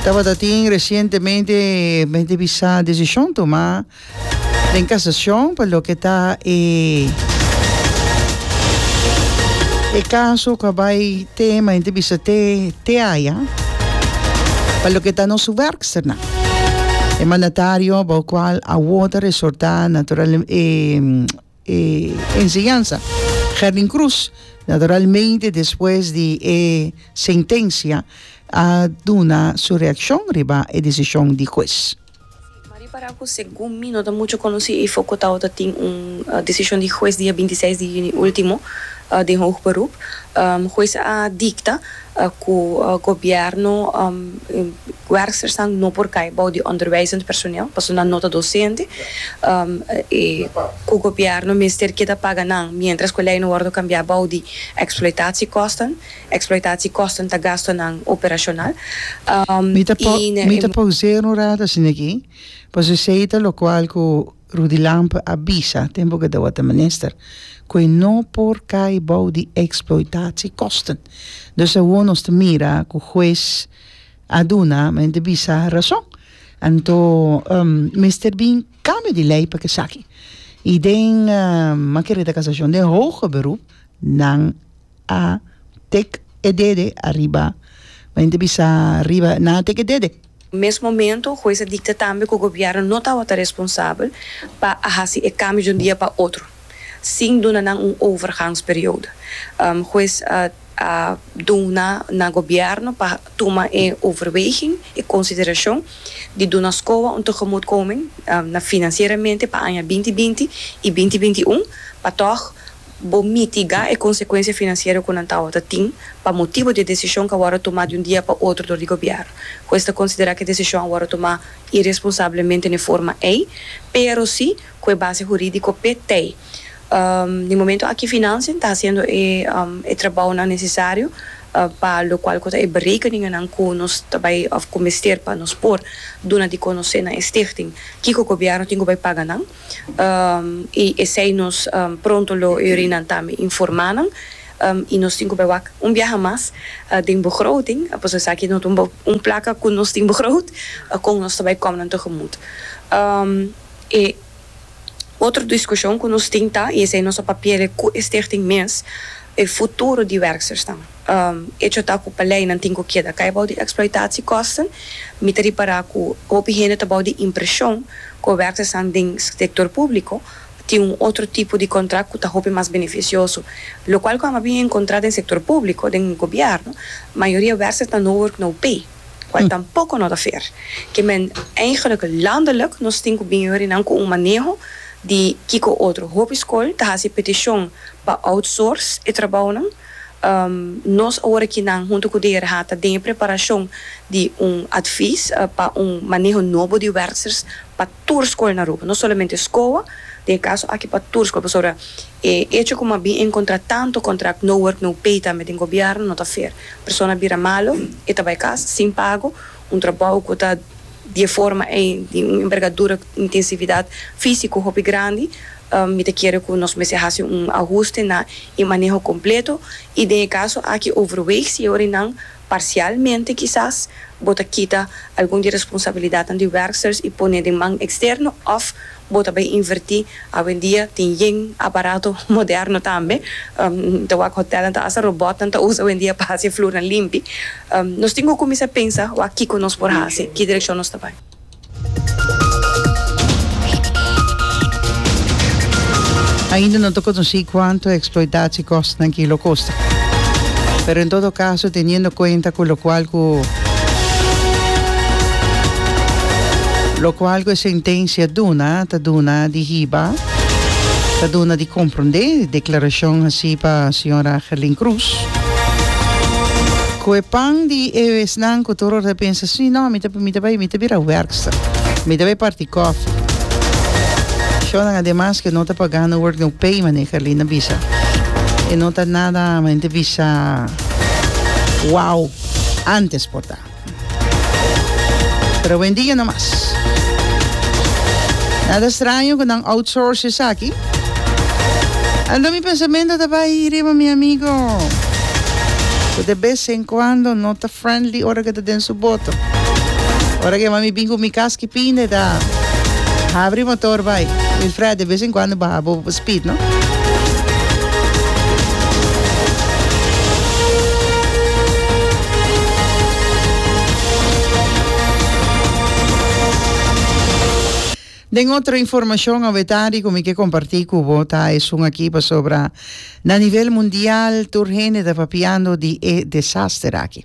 Tabata tin recientemente mente bisa decisión tomá den casación pa lo que ta e e caso cu a bay te ma mente bisa te te aya pa lo que ta nos werksternan e mandatario bo cual awo ta resorta natural e e enseñansa Gerlin Cruz naturalmente despues di e sentencia a duna su reaccion riba e decision di hues. Maria Parra cu segun mi no ta mucho conoci y foco tawata ta tin un decision di hues dia binti seis di juni ultimo den hoog beroep. Hues a dicta Ku gobièrnu werkstersan no por kai bou di onderwijzend personeel pasobra nan no ta dosente i ku gobièrnu mester keda paga nan miéntras ku e lei no wòrdu kambiá bou di eksploitasiekosnan. Eksploitasiekosnan ta gastunan operashonal i na e. Mi ta paus'é un rato asina aki pasobra esei ta lokual ku. Rudy Lampe a bisa, tempo cu e dawat ta minister, cu e no por cay bao di exploitatie kosten. Dus awo nos ta mira cu huez a duna, men e ta bisa, razon. Anto mester bin cambio di ley pa esaki. Y den, makier di ta casacion, den hoger beroep, nan. a take e dede ariba. Bay inti bisa riba nan a take e dede. Mes momento hues a dicta tambe cu gobierno no tabata responsabel pa a haci e cambio di un dia pa otro sin duna nan un overgangsperiodo. Hues a duna na gobierno pa tuma e overweging, e consideracion di duna scoa un tegemoetkoming na financieramente pa aña binti binti y binti binti un pa toch Bo mitigá e konsekuensia finansiero ku nan tabata tin pa motibu di e desishon ku a wòrdu tumá di un dia pa otro dor di gobièrnu, ku esta konsiderá ku e desishon a wòrdu tumá iresponsablemente n'e forma ei, pero si ku e base hurídiko p'e tei. N'e momentu aki Financiën ta hasiendo e trabounan nesesario pa lokual ku ta e berekeninganan ku nos ta bai òf ku mester pa nos por duna di konosé na e stichting kiko gobièrnu tin ku bai paga nan. i esei nos pronto lo uri nan tambe informa nan i nos tin ku bai wak un biaha mas den begroting pues esaki no ta un un plaka ku nos tin begroot kon nos ta bai kom nan tegemut e otro diskushon ku nos tin ta i esei nos a papiele ku e stichting mes e futuro di werksersnan. E chota ku pa leinan tin ku keda kai bou di eksploitatie kosten. Mi ta ripara ku hopi hende ta bou di impreshon ku e werkersan den sektor públiko tin un otro tipo di kontrakt ku ta hopi mas benefisioso, lokual kuanba bin enkontra den sektor públiko, den gobièrnu, mayoria werkersan no wurk no pay, kual tampoko no ta fair. Ke men eigenlik landelik nos tin ku bin yurinan ku un maneho di kiko otro. Hopi skol ta hasi petishon pa outsource e trabounan. Nos ora ki nan hunto ku DRH ta den e preparashon di un advis pa un maneho nobo di wèrksers pa tur skol na Aruba, no solamente SCOA, den e kaso aki pa tur skol, pasobra e echo ku m'a bin enkontrá tantu kontrakt no work no pay tambe den gobièrnu no ta fair. Persona bira malo, e ta bai kas sin pago Un trabou ku ta di e forma ei di un envergadura ku intensividat físiko hopi grandi, mi ta kere ku nos mester hasi un ahuste na e maneho kompleto i den e kaso aki overweeg si e orinan parsialmente kisas bo ta kita algun di e responsabilidatnan di werksters i pone den man eksterno òf Bo ta bay invertí. Awendia tin yen a barato moderno tambe. Ta wak hotelnan ta hasta robotnan ta usa awendia pa hasi e flurnan limpi. Nos tin ku kuminsá pensa wak kiko nos por hasi, ki direkshon nos ta bai. Ainda no ta konosí kuantu eksploitachi kosnan ki lo kosta. Pero en todo kaso teniendo kuenta ku lokual ku. Lokual ku e sentensia duna ta duna di hiba, ta duna di komprondé deklarashon hasi pa señora Gerlin Croes. Ku e pan di e esnan ku tur ora ta pensa, sí, no, mi ta mi ta bai, mi ta bira werkster, mi ta bai parti koffie. Shownan ademas ku e no ta pagá no work no pay, manera Gerlin a bisa. E no ta nada, manera e ta bisa, wow. antes por ta. Pero wendia no mas. Nada straño cu nan outsource esaki. Anto mi pensamento ta bay hi riba mi amigo cu de bes en cuando no ta friendly ora cu ta den su boto. Ora cu mami bin cu mi cas ki pinda ta habri motor bay. Wilfred, de bes en cuando baha bo Pit no. Den otro informacion awe tardi cu mi ke comparti cu bo ta esun aki pasobra na nivel mundial tur hende ta papiando di e desaster aki.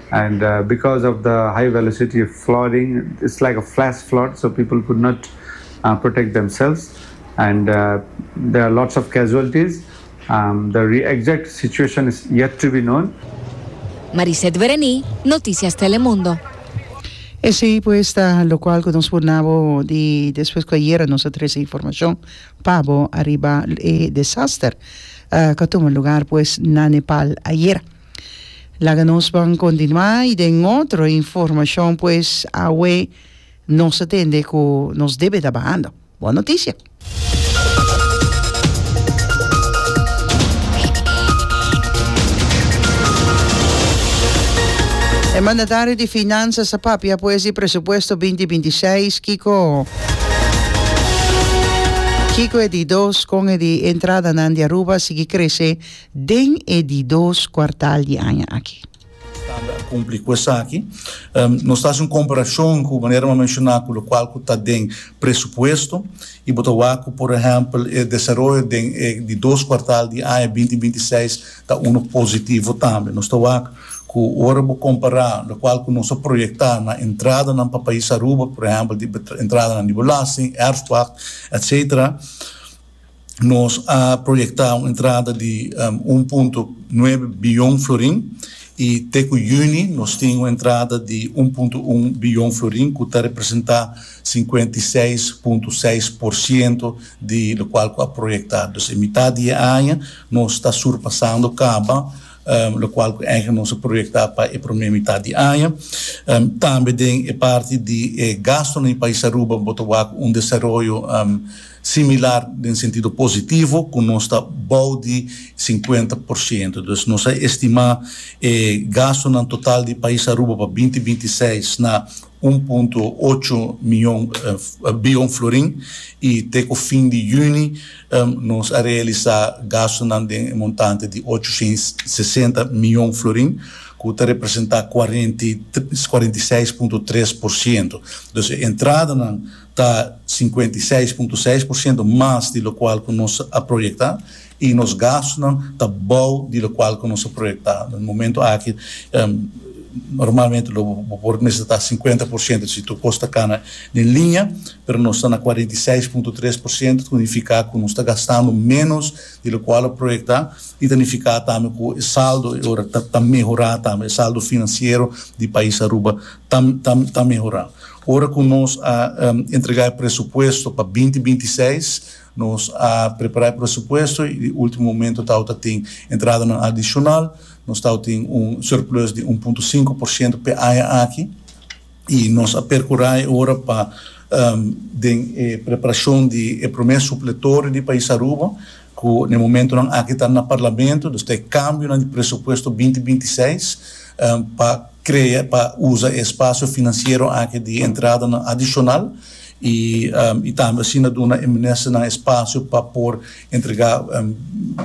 and because of the high velocity flooding it's like a flash flood so people could not protect themselves and there are lots of casualties the exact situation is yet to be known. Mariseth Bereny, Noticias Telemundo. Esey pues ta locual cu nos por na bo di despues cu ayera nos a trece informacion pa bo ariba e desaster cu a tuma lugar pues na Nepal ayera. Laga nos ban continua y den otro informacion pues awe nos a tende cu nos debe ta bahando. Bon noticia. E mandatario di Finanzas a papia pues di presupuesto binti binti i seis kico kico e di dos con e di entradanan di Aruba a sigui crece den e di dos kuartal di aña aki. Standa a kumpli ku esaki. Nos ta hasi un komparashon ku manera bo a menshoná ku lokual ku ta den presupuesto i bo ta wak ku por ehèmpel e desaroyo den e di dos kuartal di aña binti binti i seis ta unu positivo tambe. Nos ta wak ku ora bo kompará lokual ku nos a proyektá na entradanan pa pais Aruba, por ehèmpel di entradanan di belasting, erfpacht, etcetera, nos a proyecta un entrada di un punto nuebe billon florin y te cu juni nos tin un entrada di un punto un billon florin cu ta representa cincuenta y seis punto seis por ciento di locual cu a proyecta. Dus e mitad di e aña nos ta surpasando caba locual cu eigenlijk nos a proyecta pa e prome mitad di aña. Tambe den e parti di e gastonan di Pais Aruba bo ta wak un desaroyo Similar den sentido positivo cu nos ta bao di cincuenta por ciento. Dus nos a estima e gastonan total di pais Aruba pa binti binti i seis na un punto ocho mion bion florin i te cu fin di juni nos a realisa gastonan den e montante di ocho shen i sesenta mion florin cu ta representa cuarenta i seis punto tres por ciento. Dus e entradanan ta sinkuenta i seis punto seis por siento mas di lokual ku nos a proyektá i nos gastunan ta bou di lokual ku nos a proyektá. Den momentu aki normalmente lo bo por mester ta sinkuenta por siento si tur kos ta kana den liña, pero nos ta na kuarenta i seis punto tres por siento ta nifiká ku nos ta gastando ménos di lokual lo proyektá i ta nifiká tambe ku e saldo e ora ta mehorá tambe, e saldo finansiero di pais Aruba ta mehorá. Ora cu nos a entrega e presupuesto pa binti binti seis, nos a prepara e presupuesto y di ultimo momento tawata tin entradanan adicional. Nos tawata tin un surplus di un punto sinku por ciento p'e aña aki y nos a percura e ora pa den e preparacion di e prome supletorio di pais Aruba Ku n'e momentunan aki ta na parlamento, dus ta e kambionan di presupuesto binti binti seis pa krea pa usa e espasio finansiero aki di entradanan adishonal i i tambe asina duna e ministernan espasio pa por entregá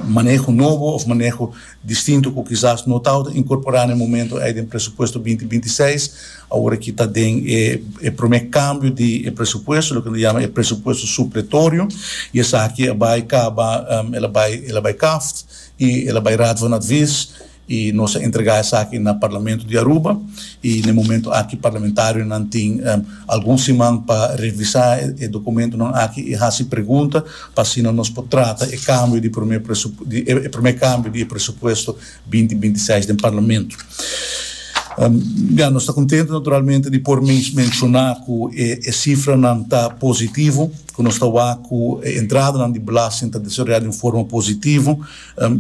maneho nobo òf maneho distinto cu kisas no tawata incorpora na e momento ey den presupuesto binti binti i seis, awor aki ta den e prome cambio di e presupuesto, loke nos yama e presupuesto supletorio, y esaki a bay caba, el a bay, el a bay kaft y el a bay raad van advies, y nos a entrega esaki na Parlamento di Aruba, y na e momento aki parlamentarionan tin algun siman pa revisa e documentonan aki y haci pregunta. pa asina nos por trata e kambio di e promé kambio di e presupuesto binti binti i seis den Parlamento. Ya, nos ta kontentu naturalmente di por menshoná ku e sifranan ta positivo, ku nos ta wak ku e entradanan di belasting ta desaroyá den forma positivo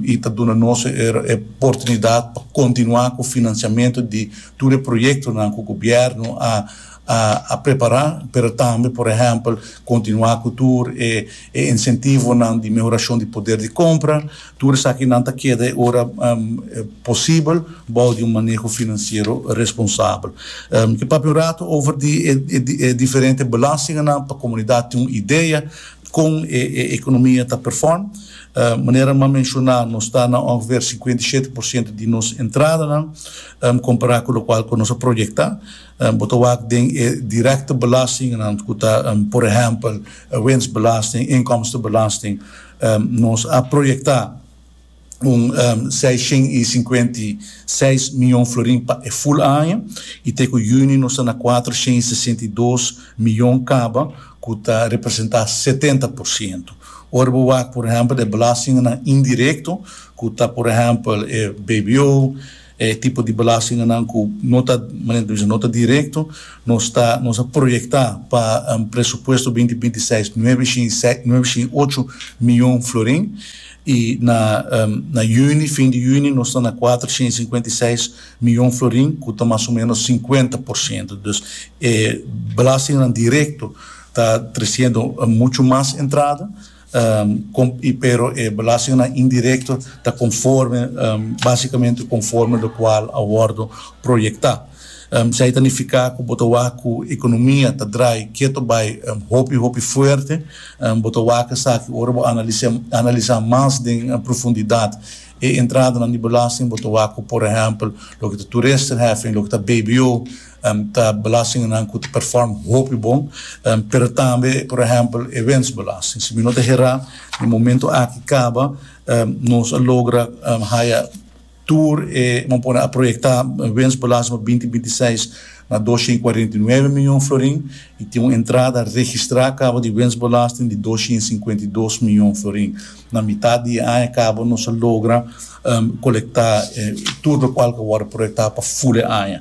i ta duna nos e oportunidat pa kontinuá ku finansiamentu di tur e proyektonan ku gobièrnu a a prepará, pero tambe por ehèmpel kontinuá ku tur e e insentivonan di mehorashon di poder di kompra. Tur esaki nan ta keda e ora posibel bou di un maneho finansiero responsabel. Ke papia un rato over di e e diferente belastinganan pa komunidat tin un idea kon e e ekonomia ta perform. Manera m'a menshoná nos ta na ongeveer sinkuenta i shete por siento di nos entradanan kompará ku lokual ku nos a proyektá. Bo ta wak den e direkte belastingnan ku ta por ehèmpel winsbelasting, inkomstebelasting. Nos a proyektá un seis shen i sinkuenta i seis mion florin pa e ful aña i te ku yüni nos ta na kuater shen i sesenta i dos mion kaba ku ta representá setenta por siento. Ora bo wak por ehèmpel e belastingnan indirekto ku ta por ehèmpel e bbo, E tipo di belastinganan ku no ta, manera ta bisa, no ta direkto, nos ta, nos a proyektá pa presupuesto binti binti seis nuebe shin seis, nuebe shin ocho mion florin i na na yüni, fin di yüni, nos ta na kuater shin sinkuenta i seis mion florin ku ta mas o ménos sinkuenta por siento. Dus e belastinganan direkto ta tresiendo muchu mas entrada. pero e belastingnan indirecto ta conforme, basicamente conforme locual a wordo proyecta. Esey ta nifica cu bo ta wak cu economia ta draai keto bai hopi hopi fuerte. Bo ta wak esaki ora bo analiza mas den profundidad e entradanan di belasting, bo ta wak cu por ehempel loke ta toeristerheffing, loke ta bbo, Ta belastingnan ku ta perform hopi bon, pero tambe por ehèmpel e wensbelasting. Si mi no ta herá, den momentu aki kaba nos a logra haya tur e, bo a pone a proyektá wensbelasting pa binti binti seis na dos sien kuarenta i nuebe mion florin i tin un entrada registrá kaba di wensbelasting di dos sien sinkuenta i dos mion florin. Na mitat di e aña kaba nos a logra kolektá tur lokual ku a wòrdu proyektá pa ful e aña.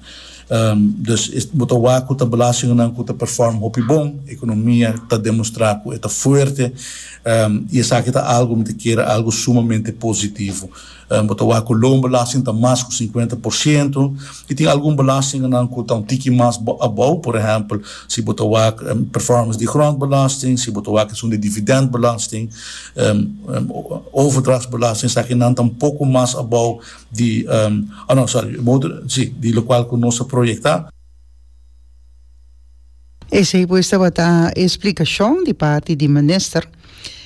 Dus bo ta wak ku ta belastingnan ku ta perfòm hopi bon, ekonomia ta demostrá ku e ta fuerte i esaki ta algu mi ta kere algu sumamente positivo. Bo ta wak cu loonbelasting ta mas cu cincuenta por ciento y tin algun belastinganan cu ta un tiki mas abao, por ehempel, si bo ta wak performance di grondbelasting, si bo ta wak esun di dividendbelasting, overdrachtsbelasting, esakinan ta un poco mas abao di, oh no, sorry, di locual cu nos a proyecta. Esei pues tabata e splikashon di parti di minister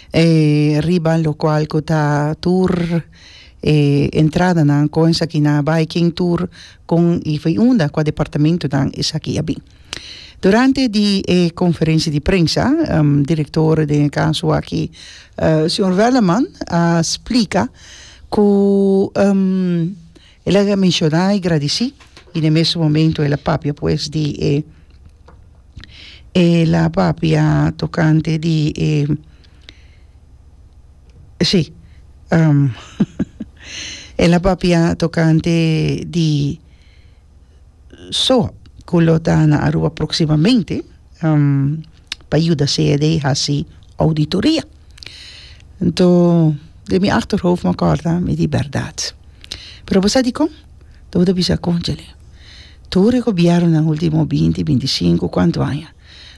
riba lokual ku ta tur e entradanan kon esaki na bai ken tur kon i for unda kua departamentunan esaki a bin durante di e konferensia di prensa direktor den e kaso aki señor Wellerman a splika ku. El a menshoná i gradisí, i na e mesun momentu el a papia pues di e el a papia tokante di e sí el a papia tokante di. So, cu lo ta na Aruba proximamente, pa yuda CED haci auditoria. Anto, den mi achterhoofd mi a corda, mi di, Berdad. Pero bo sa dicon? Lo bo ta bisa, Cónchale, tur e gobiernonan último binti, binti sinku, cuantu aña,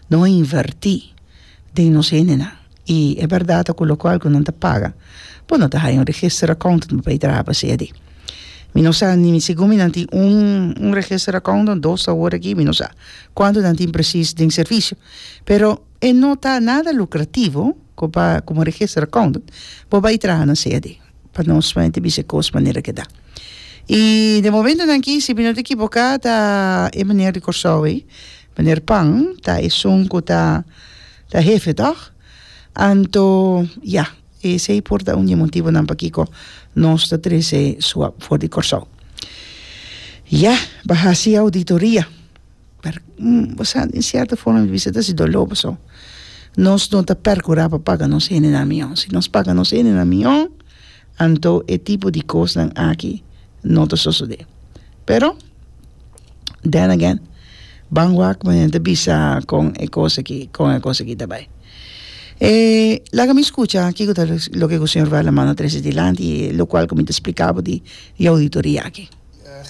no a invertí den nos hendenan. I e berdad ta cu locual cu nan ta paga, bo no ta haya un register accountant pa bay traha pa sea di. Mi no sa ni mi segun mi nan tin un un register accountant, dos ta hoor aki, mi no sa cuantu nan tin precies den servicio. Pero e no ta nada lucrativo cu pa como register accountant bo bay traha na sea di, pa nos mente bisa e cos manera cu e ta. I den momentonan aki si mi no ta equivoca ta e meneer di Corsou ey, meneer Pan, ta esun cu ta. Ta hefe tòg? Anto ya, esei por ta un di e motibunan pakiko nos ta trese su ap for di Kòrsou. Ya, bo a hasi ouditoria. Pero, bo sa, di un sierto forma mi bisa ta hasi doló boso. Nos no ta perkurá pa paga nos hendenan mihó. Si nos paga nos hendenan mihó, anto e tipo di kosnan aki no ta sosodé. Pero. then again ban wak me ta bisa con e cos aki con e cos aki ta bay e laga mi scucha kico ta loke cu señor Werlin manda trece e dilanti y lo cual cu mi ta splicabo di e auditoria aki.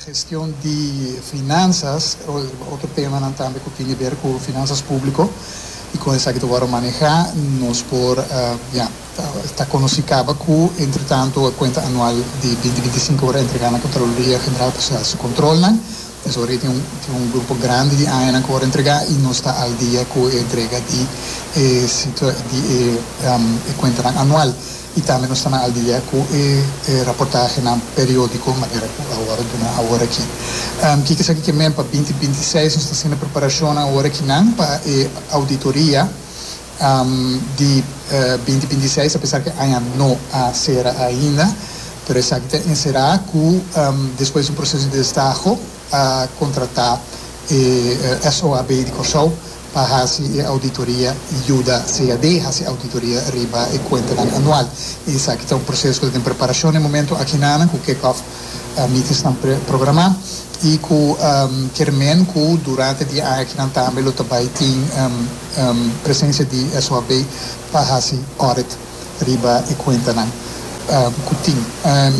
Gestion di finanzas e otro temanan tambe cu tin di ver cu finanzas publico y con esaki ta worde maneha nos por ya. Ta konosí kaba ku entretantu e kuenta anual di binti binti sinku por entregá na Kontraloria General pa sha su kontrolnan. Pues ori tin un tin un grupo grandi di añanan ku por entregá i nos ta al dia ku e entrega di e situa di e e kuentanan anual i tambe nos ta nan al dia ku e e raportahenan periódiko manera ku awor duna awor aki. Kiko esaki ke men pa binti binti seis nos ta hasinda preparashonnan awor akinan pa e auditoria. di binti binti seis apesar ku e aña no a sera ainda pero esaki ta enserá ku despues di un proseso di destaho a kontratá e SOAB di Kòrsou pa hasi e auditoria i yuda CAD hasi auditoria riba e kuentanan anual i esaki ta un proseso ku ta den preparashon den e momentu akina nan ku kickoff meetings nan programa y cu ke rmen cu durante di aña aki nan tambe lo ta bay tin presencia di SOAB pa haci audit riba e cuentanan cu tin.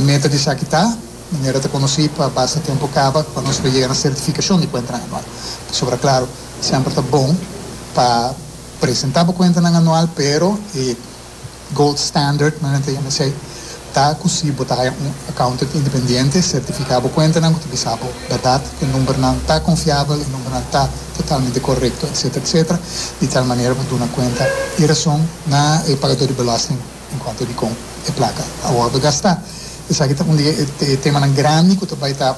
Meta di esaki ta, manera ta conoci, pa basta tempo caba pa nos lo yega na certificacion di cuentanan anual. Pasobra claro, semper ta bon pa presenta bo cuentanan anual pero e Gold Standard nan e TMC ta ku si bo ta haya un accountant independiente sertifiká bo kuentanan ku ta bisa bo bèrdat ku e numbernan ta konfiabel, e numbernan ta totalmente korekto, etsetera, etsetera, di tal manera pa duna kuenta i rason na e pagador di belasting en kuanto a dikon e plaka a wòrdu gastá. Esaki ta un di e temanan grandi ku ta bai ta.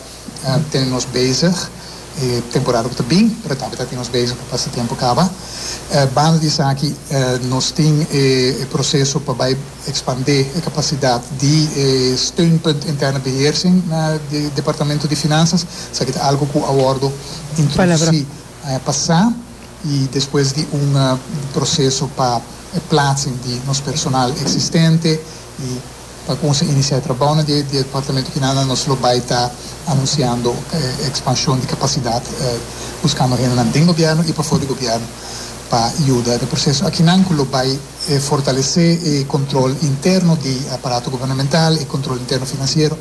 Ten nos bezig e temporada ku ta bin, pero tambe ta tin nos bezig pa pasa tempu kaba. Banda di esaki nos tin e proseso pa bai ekspandé e kapasidat di e steunpunt interne beheersing na Departamento di Finansas. Esaki ta algu ku a wòrdu introdusí aña pasá i despues di un proseso pa plaatsing di nos personal eksistente i. pa cunsey inicia trabao na di departamento kinan nan nos lo bay ta anunciando expansion di capacidad buscando hendenan den gobierno y pafo di gobierno pa yuda na e proceso akinan cu lo bay fortalece e control interno di aparato gubernamental e control interno financiero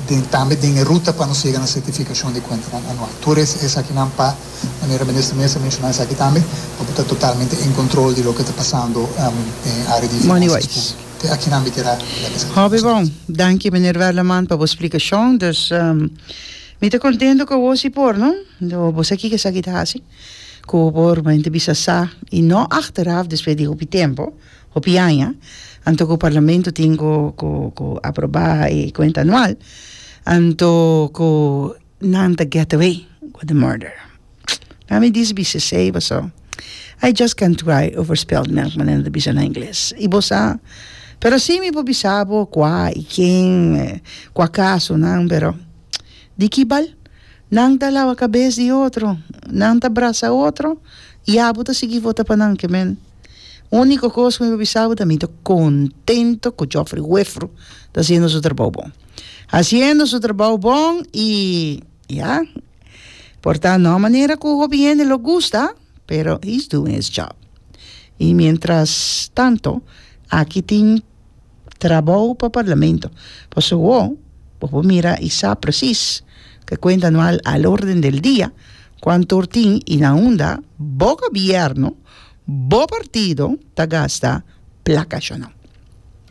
den tambe den e ruta pa nos yega na certificacion di cuentanan anual tur esaki nan pa manera Minister Mesa menciona esaki tambe pa bo ta totalmente en control di loke ta pasando den area di finanzas publica. Te aki nan biker a la mesa. Hopi bon. Danki Meneer Werleman pa bo splikashon. Dus mi ta kontentu ku awor si por no. Bo sa kiko esaki ta hasi ku bo por beinta bisa sa i no achteraf despues di hopi tempu, hopi aña, anto ku parlamento tin ku ku ku aproba e kuenta anual, anto ku Nan ta get away with the murder. Nan mi dici bisha sey paso I just can try over spilled milk manera ta bisha na ingles. Y bo sa pero si mi por bisa bo cua y ken cua caso nan pero di ki bal nan ta lawa cabes di otro nan ta brasa otro y abo ta sigui vota pa nan ke men unico cos cu mi por bisa bo ta mi ta contento cu Geoffrey Wefru ta haciendo su trabao bon. Haciendo su trabao bon y ya por ta no manera cu hopi hende lo gusta pero he's doing his job y mientras tanto aki tin trabao pa parlamento pasobra wo bo por mira y sa precies ke cuenta no al al orden del dia cuanto tur tin y na unda bo gobierno bo partido ta gasta placa ashonon.